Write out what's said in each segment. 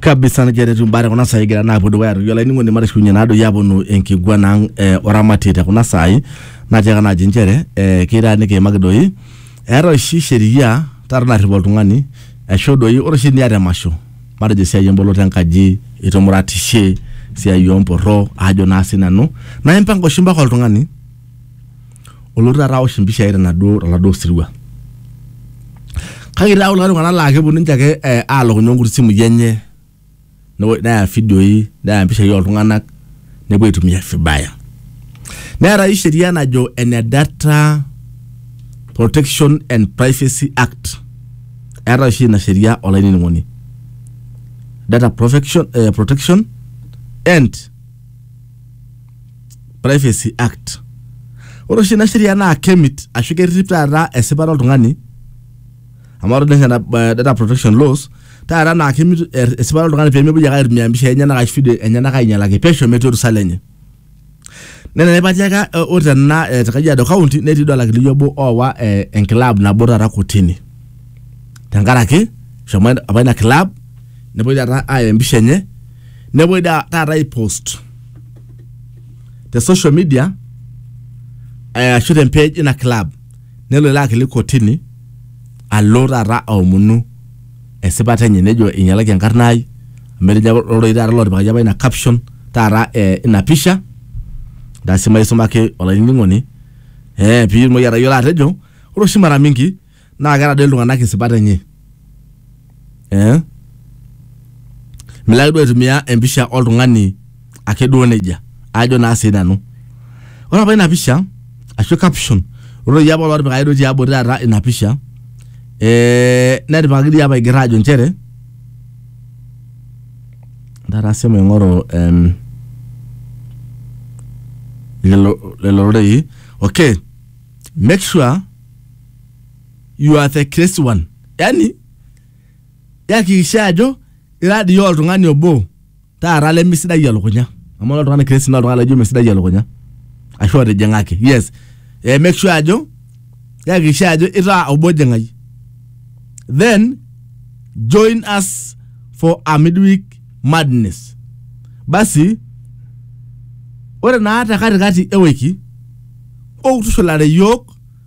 kabisa negira etu mbare kuna saai egira naapuo dukuya aitoki olainining'oni matishikunye naadoi aponu enkiguana ang eh, oramatie te kuna saai natiaka naaji nchere eh, keita nikiimaki doi eeta oshi sheria taata narrip oltung'ani aisho doi ore oshi niata emasho matejo esiai emboloto enkaji itumuratishe esiai omporro ajo naa sinanu naa impanga oshi mpaka oltung'ani olotu taata aosh impishai tenaduo toladuo sirua kake itaa kulikae tung'anak laa keponu ninche ake eh, aalokunye nkuti simui enye newo- neya ifidioi neya impishai oltung'anak nepuo aitumia vibaya neetai sheria najo ene data protection and privacy act eeta oshi ina sheria olainining'oni data protection, eh, protection and privacy act ore oshi ina sheria naa kemit ashu kerrip taata esipata oltung'ani amu ore ninye data protection laws taata naa kemit er- esipata oltung'ani pemepuoi ake aitumia impishai enyenak ashu video enyenak ainyialaki pesho metii orusa lenye nena naipatiaka eh, ore tena eh, te kajiado county netii duo olakili obo oowa eh, enkilab nabo taata kotini tenkaraki shomo apa ina club nepuoi taata aya empisha enye nepuoi da- taata aipost te social media eh, ashu te page ina club nelo ilo akili kotini alo taata aomonu esipata enye nejo inyalaki enkarna ai amu etejo apa loroi taata lotipikaki apa ina caption taata eh, ina pisha ndasi maisumaki olainining'oni eh, piitumoki atayiolo atejo ore oshi mara mingi naa keeta doi iltung'anak isipat enye eh? milo ake duo aitumia empisha oltung'ani ake duo nejia ajo naa sii nanu ore apa ina pisha ashu caption ore doi apa olotipikaki duo tiabori taata ina pisha eh, netipikaki dii apa aigerra ajo nchere taata sii maing'oru em, lelo lelo rorei okay make sure you are the crazy one yani yakikisha ajo ira dii oltung'ani obo taata lemesidai elukunya amu ore oltung'ani crazy naa oltung'ani laijo mesidai elukunya ashu otijing'aki yes eh, make sure ajo yakikisha ajo itaa obo jing'ai then join us for a midweek madness basi ore naa te katikati ewiki okutushulare yiok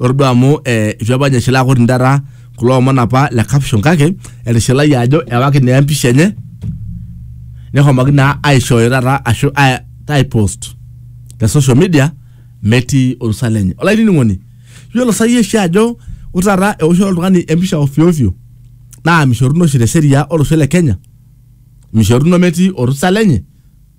Ore duo amu eh, itu apa ninye eshilaa koti taata kulo omon apa le caption kake etishilayie ajo ewaki naa empisha enye nehomoki naa aishooyo taata ashu ai- aipost te social media metii orusa lenye. Olainining'oni, yiolo sa iyie oshi ajo ore taata eoshoto oltung'ani empisha ovyo ovyo naa mishoruno oshi te sheria olosho le Kenya, mishoruno metii orusa lenye.